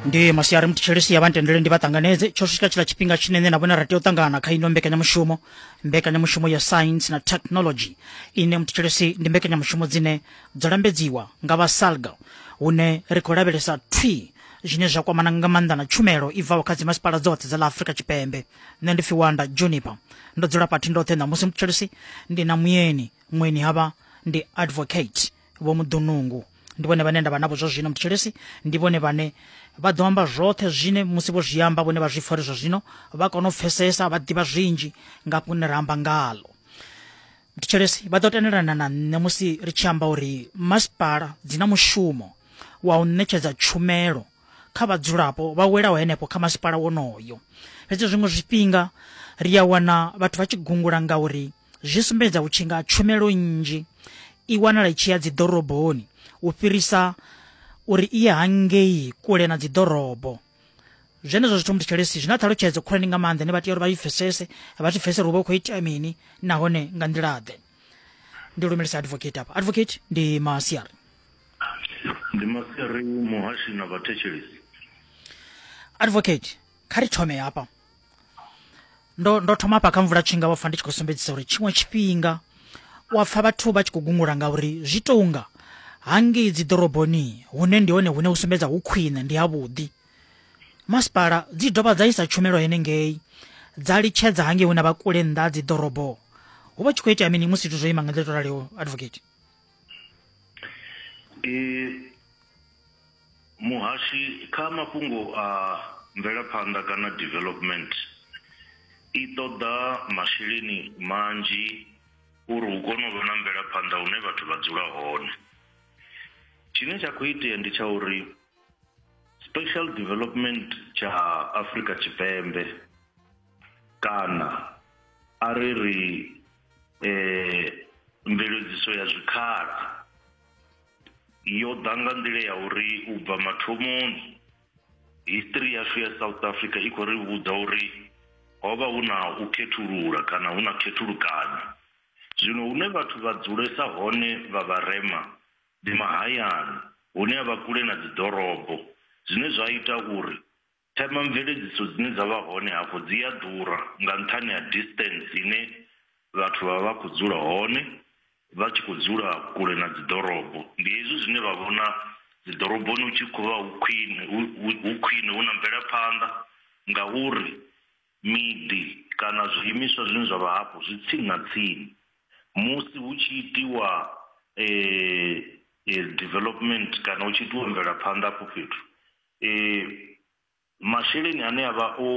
ndi masiari muthishelesi ya vhantendele ndi vha ṱanganedze tsho swika tshila tshifhinga tshine nṋe na vhone ra tea u ṱangana kha ino mbekanyamushumo mbekanyamushumo ya science na technology ine muthishelesi ndi mbekanyamushumo dzine dzo lambedziwa nga vha salga hune ri khou lavhelesa thwi zwine zwa kwamana nga maanḓa na tshumelo i bvaho kha dzimasipala dzoṱhe dza ḽa afurika tshipembe nṋe ndi fiwanda juniper ndo dzula pathi ndoṱhe ṋamusi muthishelesi ndi na muyeni mweni havha ndi advocate vho muḓunungu ndi vhone vhane nda vha navho zwa zwino mthetshelesi ndi vhone vhane vha ḓo amba zwoṱhe zwine musi vho zwi amba vhone vha zwi pfha uri zwa zwino vha kona u pfesesa vha ḓivha zwinzhi nga fhune ra amba ngalo mthetshelesi vha ḓo tendelana na nṋe musi ri tshi amba uri masipala dzi na mushumo wa u ṋetshedza tshumelo kha vhadzulapo vha welaho henefho kha masipala wonoyo fhedzi zwiṅwe zwifhinga ri a wana vhathu vha tshi gungula ngauri uri zwi sumbedza u tshinga tshumelo nnzhi i wanala i tshi ya dziḓoroboni u fhirisa uri i ye hangei kule na dziḓorobo zwenezwo zwithu muthu tshelesi zwi na ṱhalutshedzo khulwane nga maanḓa ne vha tea uri vha i pfesese vha zwi pfesese uri vha khou itea mini nahone nga nḓila-ḓe ndi lumelisa advocate apa advocate ndi masiari ndi masiari muhashi na vhathetshelesi advocate kha ri thome hafha ndo ndo thoma pa kha mvula tshinga wa pfa ndi tshi khou sumbedzisa uri tshiṅwe tshifhinga wa pfa vhathu vha tshi khou gungula nga uri zwi tonga hangei dzi ḓoroboni hune ndi hone hune u sumbedza hu khwine ndi ha vhuḓi masipala dzi dovha dza isa tshumelo hene ngei dza litshedza hangei hune vha kule nnḓa dzi ḓorobo hu vha tshi khou itea mini musi zwithu zwo ima nga nḓila to raliho advocate Muhashi kha mafhungo a mvelaphanḓa kana development i ṱoḓa masheleni manzhi uri hu kone u vha na mvelaphanḓa hune vhathu vha dzula hone. Tshine tsha kho itea ndi tsha uri special development tsha Afrika Tshipembe kana a ri ri mveledziso ya zwikhala. yo ḓa nga nḓila ya uri u bva mathomoni history yashu ya south africa i khou ri vhudza uri ho vha hu na u khethulula kana hu na khethulukanyo zwino hune vhathu vha dzulesa hone vha vharema ndi mahayani hune a vha kule na dziḓorobo zwine zwa ita uri Themamveledziso dzine dza vha hone hafho dzi a ḓura nga nṱhani ha distance ine vhathu vha vha khou dzula hone vha tshi khou dzula kule na dzi ḓorobo. Ndi hezwi zwine vha vhona dzi ḓoroboni hu tshi khou vha hu khwine hu khwine hu na mvelaphanḓa ngauri miḓi kana zwiimiswa zwine zwa vha hafho zwi tsini na tsini. Musi hu tshi itiwa development kana hu tshi itiwa mvelaphanḓa hafho fhethu Ee, masheleni ane a vha o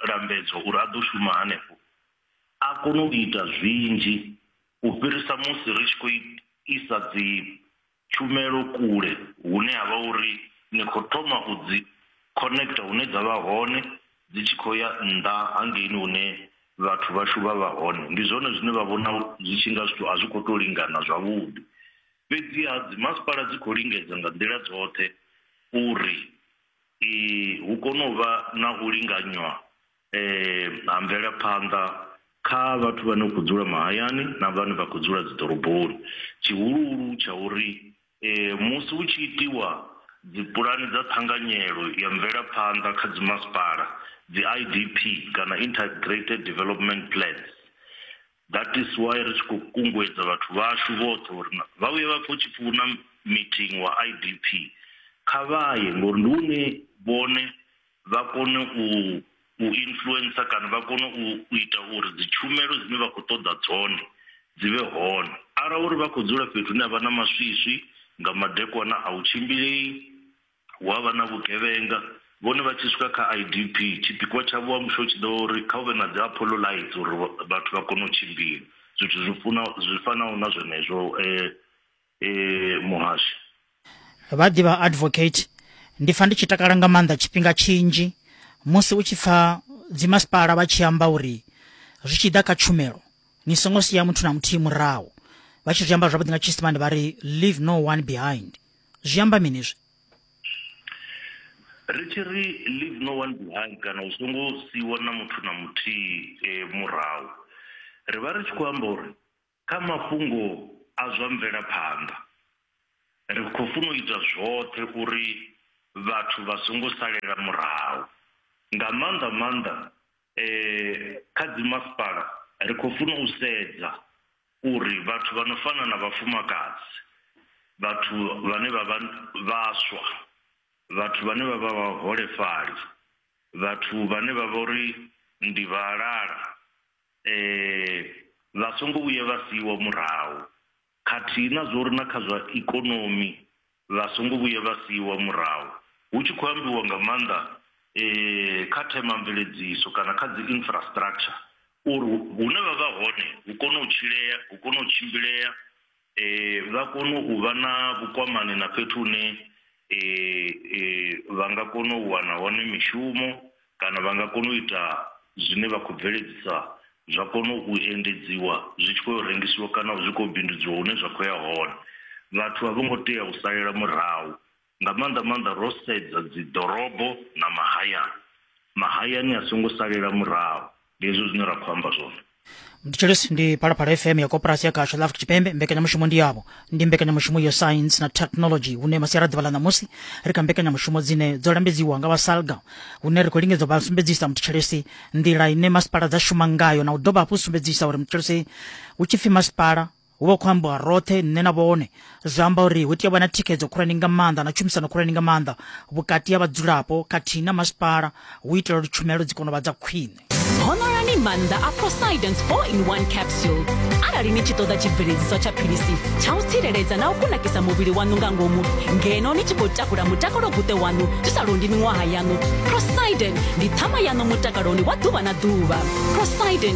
lambedzwa uri a ḓo shuma hanefho a kona u ita zwinzhi u fhirisa musi ri tshi khou isa dzi tshumelo kule hune ha vha uri ni khou thoma u dzi connector hune dza vha hone dzi tshi khou ya nnḓa hangeini hune vhathu vhashu vha vha hone. Ndi zwone zwine vha vhona zwi tshi nga zwithu a zwi khou tou lingana zwavhuḓi. Fhedziha dzimasipala dzi khou lingedza nga nḓila dzoṱhe uri hu kone u vha na u linganywa ha mvelaphanḓa kha vhathu vhane vha khou dzula mahayani na vhane vha khou dzula dziḓoroboni. Tshihuluhulu tsha uri musi hu tshi itiwa dzi pulani dza ṱhanganyelo ya mvelaphanḓa kha dzimasipala, dzi-I_D_P kana Integrated Development Plans, That is why ri tshi khou kunguedza vhathu vhashu vhoṱhe uri vha vhuye vha pfhe hu tshi pfi hu na meeting wa IDP kha vha ye ngori ndi hune vhone vha kone u u influencer kana vha kone u u ita uri dzitshumelo dzine vha khou ṱoḓa dzone dzi vhe hone arali uri vha khou dzula fhethu hune ha vha na maswiswi nga madekwana a u tshimbilei Hu a vha na vhugevhenga. Vhone vha tshi swika kha IDP, tshipikwa tshavho wa mushumo tshi ḓo vha uri kha hu vhe na dzi Apollo lights uri vhathu vha kone u tshimbila, zwithu zwi funa zwi fanaho na zwenezwo muhasho. Vha ḓi vha Advocate, Ndi pfa ndi tshi takala nga maanḓa tshifhinga tshinzhi musi u tshi pfa dzimasipala vha tshi amba uri zwi tshi ḓa kha tshumelo ni songo sia muthu na muthihi murahu, vha tshi zwi amba zwavhuḓi nga Tshiisimane vha ri leave no one behind. zwi amba mini izwi ri tshi ri leave no one behind kana u songo siwa na muthu na muthihi eh, murahu ri vha ri tshi khou amba uri kha mafhungo a zwa mvelaphanḓa ri khou funa u ita zwoṱhe uri vhathu vha songo salela murahu nga maanḓa maanḓa um kha dzimasipala ri khou funa u sedza uri vhathu vha no fana na vhafumakadzi, vhathu vhane vha vha vhaswa, vhathu vhane vha vha vhaholefhali, vhathu vhane vha vha uri ndi vhalala vha songo vhuya vha siiwa murahu khathihi na zwa uri na kha zwa ikonomi vha songo vhuya vha siiwa murahu hu tshi khou ambiwa nga maanḓa kha themamveledziso kana kha dzi infrastructure uri hune vha vha hone hu kone u tshilea, hu kone u tshimbilea, vha kone u vha na vhukwamani na fhethu hune vha nga kona u wana hone mishumo Kana vha nga kona u ita zwine vha khou bveledzisa zwa kona u endedziwa zwi tshi khou ya u rengisiwa kana zwi khou bindudziwa hune zwa khou ya hone. Vhathu a vho ngo tea u salela murahu, nga maanḓa-maanḓa ro sedza dziḓorobo na mahayani. Mahayani a songo salela murahu. ndi hezwo zwine ra khou amba zwone mthetshelesi ndi phalaphala fm ya koporasi ya gasho la afrika tshipembe mbekanyamushumo ndi yavho ndi mbekanyamushumo ya science na technology hune masiara ḓuvha ḽa ṋamusi ri kha mbekanyamushumo dzine dzo lambedziwa nga vhasalga hune ri khou lingedza vha sumbedzisa mthetshelesi nḓila ine masipala dza shuma ngayo na u dovha hafhu sumbedzisa uri mthetshelesi hu tshi pfi masipala hu vha khou ambiwa roṱhe nṋe na vhone zwi amba uri hu tea vha na thikhedzo khulwane nga maanḓa na tshumisano khulwane nga maanḓa vhukati ha vhadzulapo khathihi na masipala hu itela uri tshumelo dzi kone u vha dza khwine honorani maanḓa a prosidence 4 in 1 capsule arali ni tshi ṱoḓa tshibveledziswa tsha philisi tsha u tsireledza na u kunakisa muvhili waṋu nga ngomu ngeno ni tshi khou takula mutakalo guṱe waṋu zwi sa londi miṅwaha yaṋu prosiden ndi ṱhama yaṋu mutakaloni wa ḓuvha na ḓuvha prosiden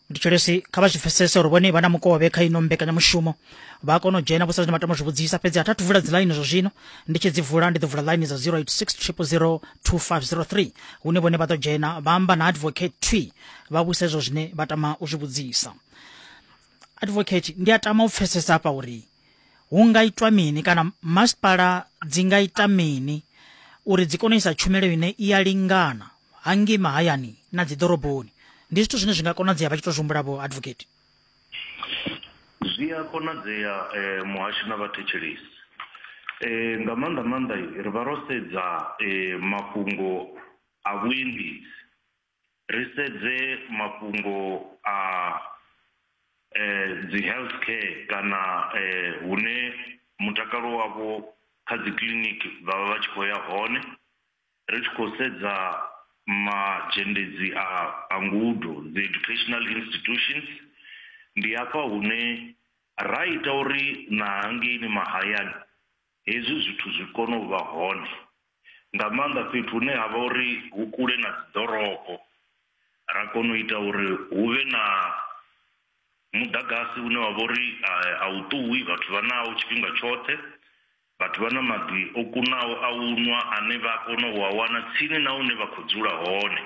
ndi tshilesi kha vha zwi pfesese uri vhone vha na mukovhe kha ino mbekanyamushumo vha kona u dzhena vho sa zwine vha tama zwi vhudzisa fhedzi a thathu vula dzilaini zwa zwino ndi tshi dzi vula ndi ḓo vula ḽaini dza 0860002503 hune vhone vha ḓo dzhena vha amba na advocate twi vha vhusa izwo zwine vha tama u zwi vhudzisa advocate ndi a tama u pfesesa hafha uri hu nga itwa mini kana masipala dzi nga ita mini uri dzi kone u isa tshumelo ine i ya lingana hangei mahayani na dzi ḓoroboni ndi zwithu zwine zwi nga konadzea vha tshi to zwi humbula vho advocate zwi a konadzea eh, muhashi na vhathetshelesi eh, nga maanḓa maanḓa ri vha ro sedza eh, mafhungo a vhuendedzi ri sedze mafhungo a eh, dzi health care kana eh, hune mutakalo wavho kha dzi kiliniki vha vha vha tshi khou ya hone Ri tshi khou sedza mazhendedzi a a ngudo, dzi educational institutions, ndi hafha hune ra ita uri na hangeini mahayani hezwi zwithu zwi kone u vha hone, nga maanḓa fhethu hune ha vha uri hu kule na dzi ḓorobo, ra kona u ita uri hu vhe na muḓagasi une wa vha uri a u ṱuwi vhathu vha nawo tshifhinga tshoṱhe, Vhathu vha na maḓi o kunaho a u nwa ane vha a kona u a wana tsini na hune vha khou dzula hone.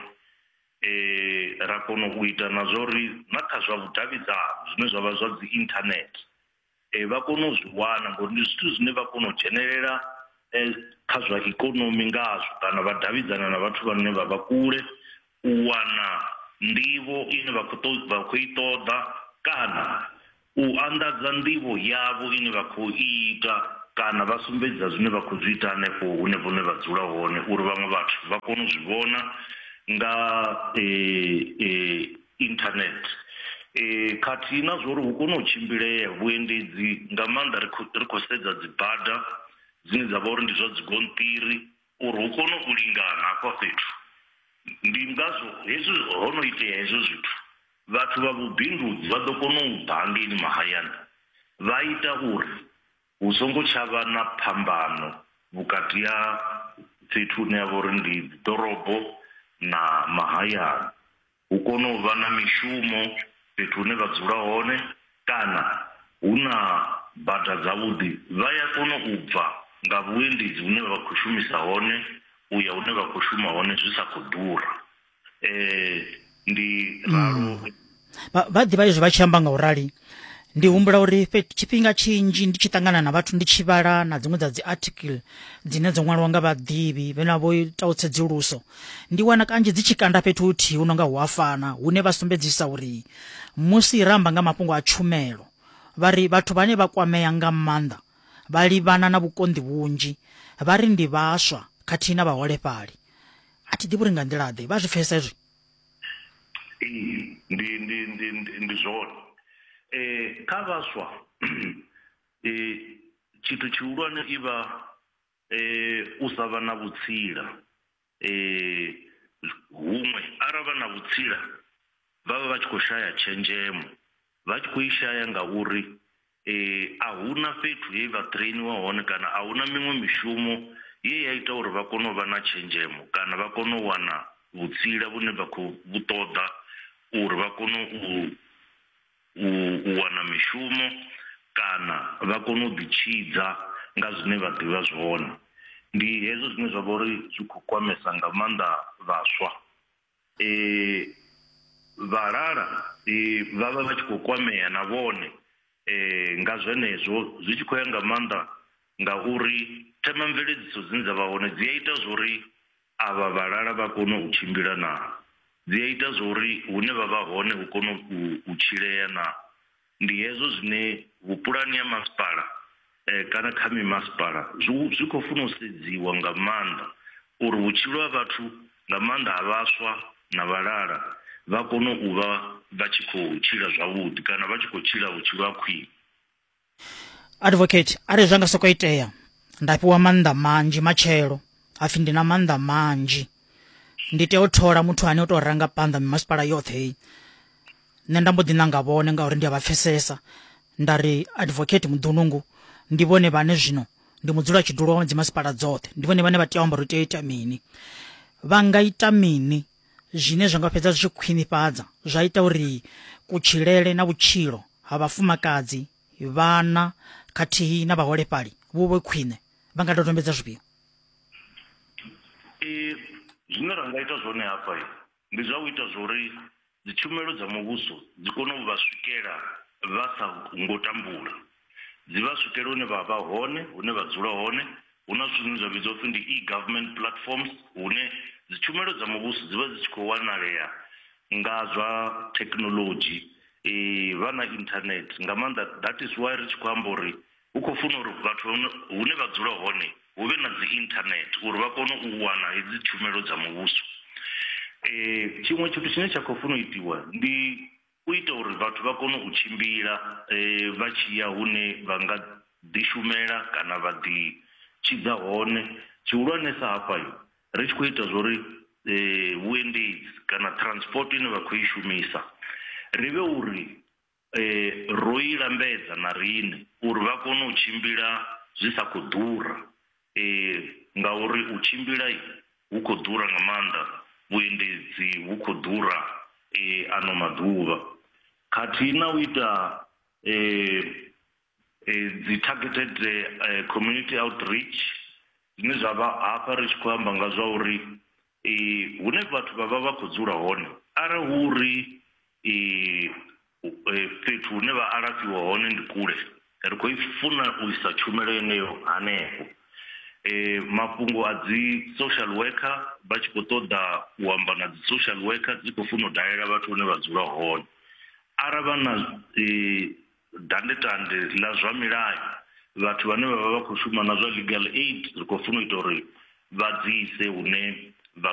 Ra kona u ita na zwa uri na kha zwa vhudavhidzani zwine zwa vha zwa dzi internet vha kone u zwi wana ngori ndi zwithu zwine vha kona u dzhenelela kha zwa ikonomi ngazwo kana vha davhidzana na vhathu vhane vha vha kule u wana nḓivho ine vha kho ṱoḓa vha khou i ṱoḓa kana u anḓadza nḓivho yavho ine vha khou i ita kana vha sumbedza zwine vha khou zwi ita hanefho hune vhone vha dzula hone uri vhaṅwe vhathu vha kone u zwi vhona nga internet khathihi na zwa uri hu kone u tshimbilea vhuendedzi nga maanḓa ri khou sedza dzibada dzine dza vha uri ndi zwa dzigonṱiri uri hu kone u lingana hafha fhethu. Ndi ngazwo hezwi ho no itea hezwo zwithu, vhathu vha vhubindudzi vha ḓo kona u ḓa hangeini mahayani vha ita uri hu songo tsha vha na phambano vhukati ha fhethu hune ha vha uri ndi ḓorobo na mahayani. hu kone u vha na mishumo fhethu hune vha dzula hone kana hu na bada dzavhuḓi vha ya kona u bva nga vhuendedzi hune vha khou shumisa hone u ya hune vha khou shuma hone zwi sa khou ḓura ndi ralo vha ḓivha izwi vha tshi amba nga u rali. ndi humbula uri tshifhinga tshinzhi ndi tshi ṱangana na vhathu ndi tshi vhala na dziṅwe dza dzi article dzine dzo ṅwaliwa nga vhaḓivhi vhena vho itaho tsedzuluso ndi wana kanzhi dzi tshi kanda fhethu huthihi hu no nga hu a fana hune vha sumbedzisa uri musi ra amba nga mafhungo a tshumelo vha ri vhathu vhane vha kwamea nga maanḓa vha livhana na vhukonḓi vhunzhi vha ri ndi vhaswa khathihi na vhaholefhali a thi ḓivhi uri nga nḓila-ḓe vha zwi pfesesa izwi ndi ndi ndi ndi ndi zwone eh kha vhaswa eh tshithu tshihulwane i vha eh u sa vha na vhutsila eh huṅwe arali vha na vhutsila vha vha vha tshi kho shaya tshenzhemo vha tshi khou i shaya ngauri a hu na fhethu he vha ṱhireiniwa hone kana a hu na miṅwe mishumo ye ya ita uri vha kone u vha na tshenzhemo kana vha kone u wana vhutsila vhune vha khou vhu ṱoḓa uri vha kone u u wana mishumo kana vha kone u ḓi tshidza nga zwine vha ḓivha zwone. Ndi hezwo zwine zwa vha uri zwi khou kwamesa nga maanḓa vhaswa e, vhalala e, vha vha vha tshi khou kwamea na vhone e, nga zwenezwo zwi tshi khou ya nga maanḓa ngauri themamveledziso dzine dza vha hone dzi a ita zwori avha vhalala vha kone u tshimbila na dzi a ita zwori hune vha vha hone hu kone u tshilea na Ndi hezwo zwine vhupulani ha masipala kana kha mimasipala zwi khou funa u sedziwa nga maanḓa uri vhutshilo ha vhathu nga maanḓa ha vhaswa na vhalala vha kone u vha vha tshi khou tshila zwavhuḓi kana vha tshi khou tshila vhutshilo ha khwine. Advocate, Arali zwa nga sokou itea nda fhiwa maanḓa manzhi matshelo hapfi ndi na maanḓa manzhi ndi tea u thola muthu ane u tou ranga phanḓa mimasipala yoṱhe heyi nṋe nda mbo ḓi ṋanga vhone ngauri ndi a vha pfesesa nda ri advocate muḓunungu ndi vhone vhane zwino ndi mudzula tshidulo wa dzimasipala dzoṱhe ndi vhone vhane vha tea u amba uri tea ita mini vha nga ita mini zwine zwa nga fhedza zwi tshi khwinifhadza zwa ita uri kutshilele na vhutshilo ha vhafumakadzi vhana khathihi na vhaholefhali vhu vhe khwine vha nga dodombedza zwifhio zwine ra nga ita zwone hafha Ndi zwa u ita zwauri dzitshumelo dza muvhuso dzi kone u vha swikela vha sa ngo tambula, dzi vha swikele hune vha vha hone, hune vha dzula hone. Hu na zwithu zwine zwa vhidzwa upfi ndi e-government platforms hune dzitshumelo dza muvhuso dzi vha dzi tshi khou wanalea nga zwa thekinoḽodzhi, vha na internet nga maanḓa that is why ri tshi khou amba uri. Hu khou funa uri vhathu hune vha dzula hone hu vhe na dzi internet uri vha kone u wana hedzi tshumelo dza muvhuso. Tshiṅwe tshithu tshine tsha khou funa u itiwa ndi u ita uri vhathu vha kone u tshimbila vha tshi ya hune vha nga ḓi shumela kana vha ḓi tshidza hone. Tshihulwanesa hafha ri tshi khou ita zwa uri vhuendedzi kana transport ine vha khou i shumisa ri vhe uri. ro i lambedza na riṋe uri vha kone u tshimbila zwi sa khou ḓura ngauri u tshimbila hu khou ḓura nga maanḓa, vhuendedzi vhu khou ḓura ano maḓuvha khathihi na u ita dzi targeted community outreach zwine zwa vha hafha ri tshi khou amba nga zwa uri hune vhathu vha vha vha khou dzula hone arali hu uri fhethu hune vha alafhiwa hone ndi kule ri khou funa u isa tshumelo yeneyo hanefho mafhungo a dzi social worker vha tshi khou ṱoḓa u amba na dzi social worker dzi khou funa u dalela vhathu vhane vha dzula hone arali vha na Dandetande ḽa zwa milayo, vhathu vhane vha vha vha khou shuma na zwa legal aid ri khou funa u ita uri vha dzi ise hune vha.